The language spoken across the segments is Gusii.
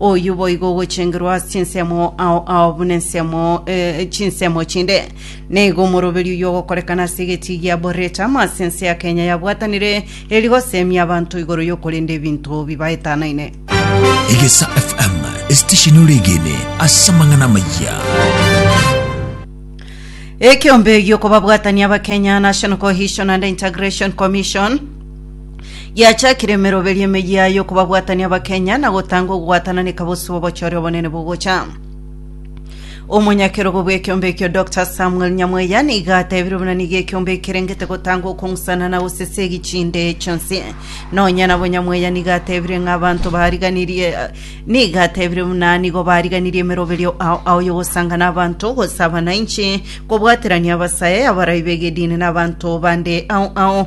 Oyio boigo ogochengerwa ase chinsemo ao ao buna ensemo eh, chinsemo chinde. Nigo omoroberio oyio ogokorekana ase egetii gia Borreta amo ase ense ya Kenya yabwatanire eri goseemia abanto igoro y'okorenda ebinto bibaetanaine. Egesa FM esitesheni oregene ase amang'ana amayia. Ekeombe gi'okobabwatania Abakenya, National Cohesion and Integration Commission, Giachakire emeroberio emeyio yaye okobabwatania Abakenya na gotanga ogwatananeka bosio obochore obonene bogocha. Omonyakerogo bw'ekiombe ekio Dr Samuel Nyamweya niga atebire buna niga ekiombe ekerengete gotanga okong'usana na gosesa egichinde chionsi. Nonya nabo Nyamweya niga atebire ng'a abanto bariganirie niga atebire buna nigo bariganirie emeroberio ao ao y'ogosanga na abanto gose abananchi kobwaterania abasae abarai b'egedini na abanto bande ao ao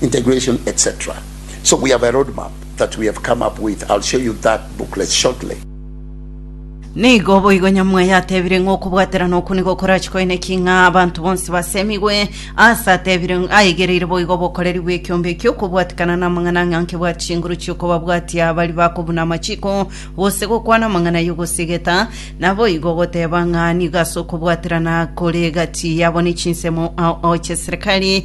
integration etc so we have a road map that we have come up with I'll show you that booklet shortly. Nigo boigo Nyamwae yatebire ng'a okobwaterana okwo nigo korachie koeneki ng'a abanto bonsi basemigwe, aase atebire ng' aegereire boigo obokoreri bw'ekiombe ekio okobwatikana namang'ana ang'e anke bwa chinguru chi'okobabwatia baria bakobuna amachiko gose gokwana amang'ana y'ogosigeta, naboigo ogoteba ng'a nigo ase okobwaterana kore egati yabo ne chinsemo ao ao chi'eserekari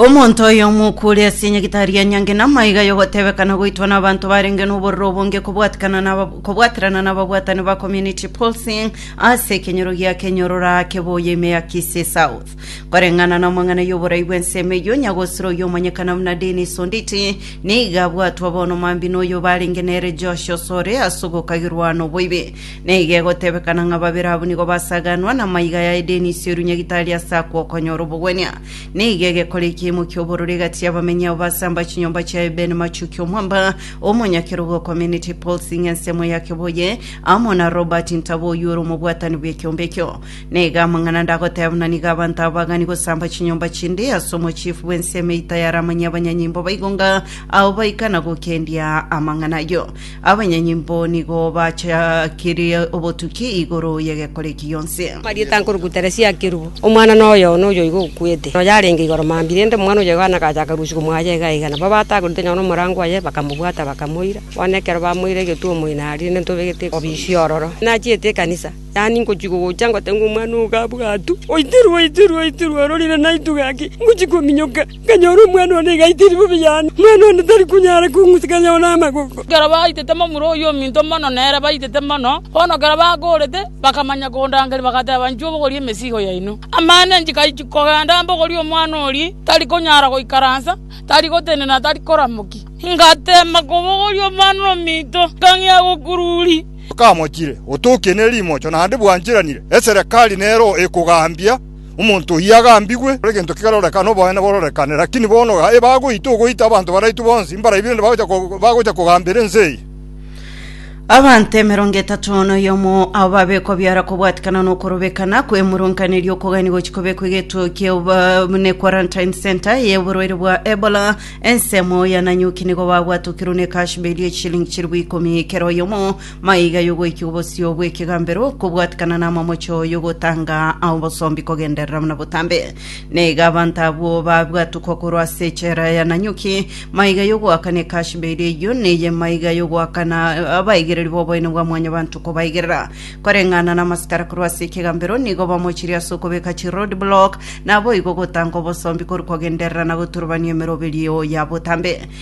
Omonto oyomo okure ase enyagitari ya nyangi na amaiga y'ogotebekana goitwa n'abanto barenge n'obororo obonge kobwatikana na aba- kobwaterana n'ababwatani ba community pulsing ase ekenyoro giake nyororo ake boye ime ya Kisii South koreng'ana na amang'ana y'oborai bw'ensemo eyio nyagosiro oyomanyekana buna Dennis Onditi nigo abwatwa bono mambia n'oyo barenge nere Josh Osore ase ogokagirwa noboibi Na igo egotebekana ng'a babere abwo nigo basaganwa namaiga ya Denisi o Runyagitari ase akwo okonyora obogwenia. Na igo egekora ekiimo ki'obororo egati y'abamenyi abo basamba chinyomba chia Eben Machuki omwamba omonyakerogo o Community Policing ensemo ya Kibuye, amo na Robert Ntabo oyio ore omobwatani bw'ekiombe ekio. Na igo amang'ana ande agoteebanwa nigo abanto aba bagani gosamba chinyomba chinde ase omochifu bw'ensemo eita y'aramanyie abanyanyimbo baigo ng'a ao baikana gokendia amang'ana ayio. Abanyanyimbo nigo bachakirie obotuki igoro y'egekoreki gionsi. Marieta nkoruku Teresia akerubo, omwana noyo one oyoigo okwete, noyo arenge igoro mambia, rende omwana oyoigo ane agachaka rusia komoacha iga iga. Nabo batagorete nonya nomorango oye, bakamobwata, bakamoira. Bono ekero bamoire egetuomo ime aria, rende ntobegete obisia ororo. Nachiete ekanisa, yaani ngochia gogocha ngoteba ng'a omwana ogo gabwatwe, oitirwe, oitirwe, oitirwe, ororire naitwe gaki, ngochia kominyoka. Nkanyora omwana one iga aitiiri bobe yane, omwana one tari konyara kong'usa kanyao namagoko. Ekero baitete momura oyio ominto mono, na ere baitete mono, bono ekero bakoorete, bakamanya kondangeria, bagateba, Inchuo bogori emesigo yaino. Amang'ana enchiko ayio chikogenda, mbogori omwana oria tari konyara goikaransa, tari gotenena, na tari koramokia. Ngatema kobogoria omwana ominto, nkang'ea gokururia. Okamochire, otokie ne rimocho, naende bwancheranire, eserekari nero ekogambia. Omonto oyio agambigwe, egento kegarorekana, noboene bororekane. Lakini bono gaki bagoita ogoita abanto baraitwe bonsi, mbaraibi rende bagocha ko- bagocha kogambera ense eye. Abanto emerongo etato noyomo abo babekwa biara kobwatikana nokorobekana kw'emurunganeria okogania gochia kobekwa egetuo ki'obonene quarantine center y'oborwaire bwa Ebola ensemo ya Nanyuki nigo babwatokirwe n'ekashibe eria eshilingi chilifu ikomi kera oyomo Maiga y'ogoikigwa bosio bw'ekegambero, kobwatikana n'amamocho y'ogotanga obosombi kogenderera buna botambe. Na iga abanto abwo babwatukwa korwa ase echela ya Nanyuki, maiga y'ogoakana ekashiba eria eyio, neye maiga y'ogoakana abaigereri b'oboene bwa Mwanyabanto kobaigerera. Koreng'ana n'amasikara korwa ase ekegambero, nigo bamochirie ase okobeka chiroadblock, naboigo ogotanga obosombi korwa kogenderera na goturubania emeroberio ya botambe.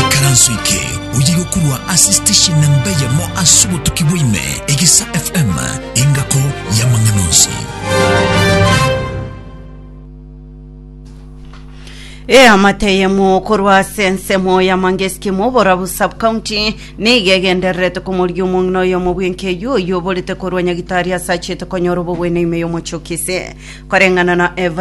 Ikaranso eke oyire okorwa ase station namba eyemo ase obotuki bwa ime, Egesa FM, engako y'amang'ana onsi. Eamate eyemo korwa ase ensemo ya mangesiki moborabu subcounty niga egendererete komoria omong'ina oyomo bw'enkeyu oyio oborete korwa nyagitari ase achete konyora obogwene ime y'omochokese koreng'ana na Evelyn